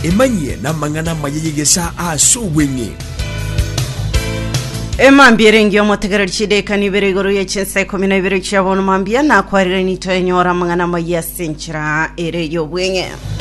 Emanyie namang'ana amaya y'egesaa aase obweng'e. Emambia ere engiya omotegereri chideka nibere igoro ye chinsa ikomi na ibere chia bono mambia nakwarire nito enyora amang'ana amaya ase enchera ere y'obweng'e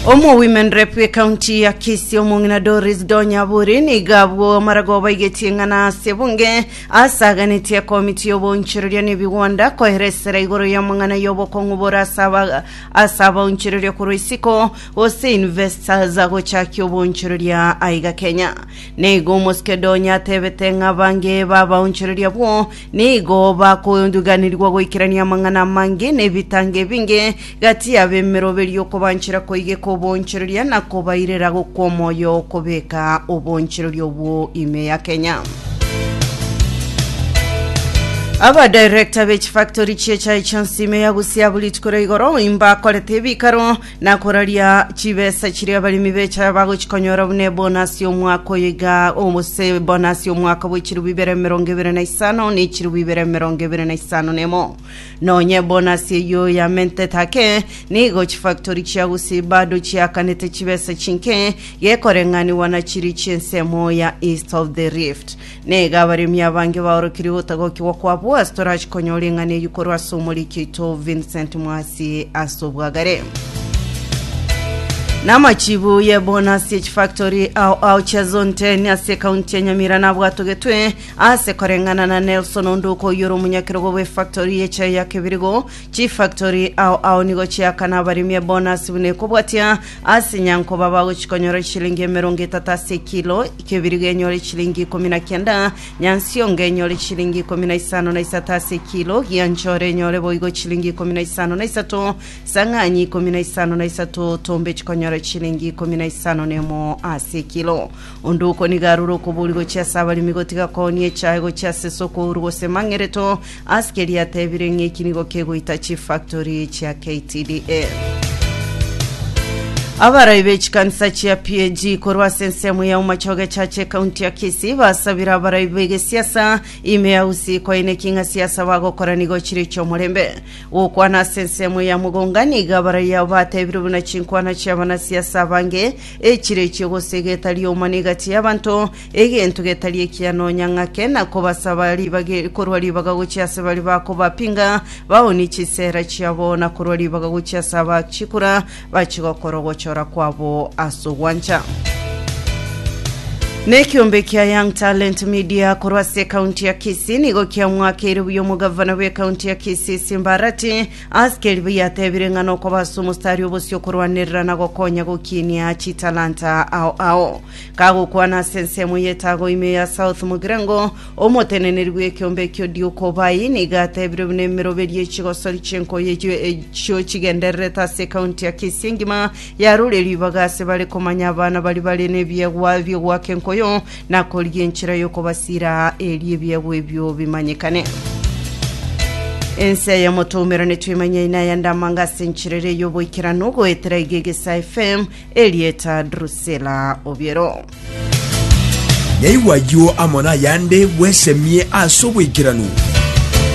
omo women rep ekaunti ya kisi omong'ina doris donyaburi niga abwo amaragoba igetie ng'ana ase bunge Asaganetie Komiti y'Oboonchoreria n'Ebigwanda koera esera igoro y'amang'ana y'obokong'u bore ase aba ase abaonchoreria korwa isiko gose investors gochakia oboonchoreria aiga Kenya. Naigo Omoskedonyo atebete ng'a abange b'abaonchoreria abwo nigo bakoduganirigwa goikerania amang'ana amange nebitango ebinge gati y'abemeroberio okobanchera koigeka oboonchoreria na kobairera gokwa omoyo okobeka oboonchoreria obwo ime ya Kenya. Abadirector b'echifactory chi'echae chionsi ime ya Busia buritikure igoro imbakorete ebikaro na koraria chibesa chiria abaremi b'echae bagochikonyora buna ebonasi y'omwaka oyo iga obose ebonasi y'omwaka bw'echirubu ibere emerongo ebere na isano na echirubu ibere emerongo ebere na isano na emo. Nonye ebonasi eyio yamentete ake, nigo chifactori chia gusii bado chiakanete chibesa chinke gekoreng'anigwa na chiria chi'ensemo ya East of the Rift. Nigo abaremi abange baorokirie gotagokigwa kwabo ase torachikonyore eng'ana eyio korwa ase omoriki oito Vincent Mwasi ase obwagare. Namachibu y'ebonasi y'echifactori ao ao chiazonte ase ekaunti ya Nyamira nabwatogetwe Ase koreng'ana na Nelson Onduko oyore omonyakerogo bw'efactory y'echai ya Kibirigo, chifactory ao ao nigo chiakana abaremi ebonasi buna ekobwatia ase nyankoba bagochia konyora eshilingi emerongo etato ase ekilo, Kibirigo enyore eshilingi ikomi na kianda, Nyansiongo enyore eshilingi ikomi na isano na isato ase ekilo, Gianchore enyore boigo eshilingi ikomi na isano na isato, Sang'anyi ikomi na isano na isato, Tombe chikonyora eshilingi ikomi na isano nemo ase ekilo. Onde okoniga arure okobori gochia ase abaremi gotiga koonia echae gochia ase esoko ouru gose mang'ereto, ase keria atebire ng'a eki nigo kegoita chifactory chia KTDA. Abarai b'echikanisa chia PAG korwa ase ensemo ya Umachoge Church ekaunti ya Kisii basabire abarai b'egesiasa ime ya Usi koina eking'a siasa bagokora nigo chire chi'omorembe. Gokwana ase ensemo ya Mugonga nigo abarai abo batebire buna chinkwana chi'abanasiasa abange Echirechi gose egeta ri'omwana egati y'abanto, egento getari ekiya nonya ng'ake, na kobasaba ribaga e- korwa ribaga gochia ase baria bakobapinga, baoonie chisera chiabo, na korwa ribaga gochia ase abachikura, bachigokora ogochora kwabo ase ogwancha. Ne ekiombe kia Young Talent Media korwa ase ekaunti ya Kisii nigo kiamwakeire buya omogavana bw'ekaunti ya Kisii Simbarati Aasikeri bayateebire ng'a nokoba ase omostari obosio okorwanerera na gokonya gokinia chitalanta ao ao. Kagokwana ase ensemo y'etago ime ya South Mugirango, omoteneneri bw'ekeombe ekio Duke Obai nigo ateebire buna emeroberio ye chigosori chi'enkoyo echio echio chigendererete ase ekaunti ya Kisii engima yaroire ribaga ase bare komanya abana baria bare nebiegwa biogoaka enkoyo Na korigia enchera y'okobasiira aa, erio ebiegwa ebio bimanyekane. Ense y'omotoumeranetwe emanye aina aya ndamanga ase enchera ere y'oboikeranu, goetera iga egesa FM, erieta Drusilla Obiero. Nyaigwa ayio amo nayande bwesemie ase oboikeranu.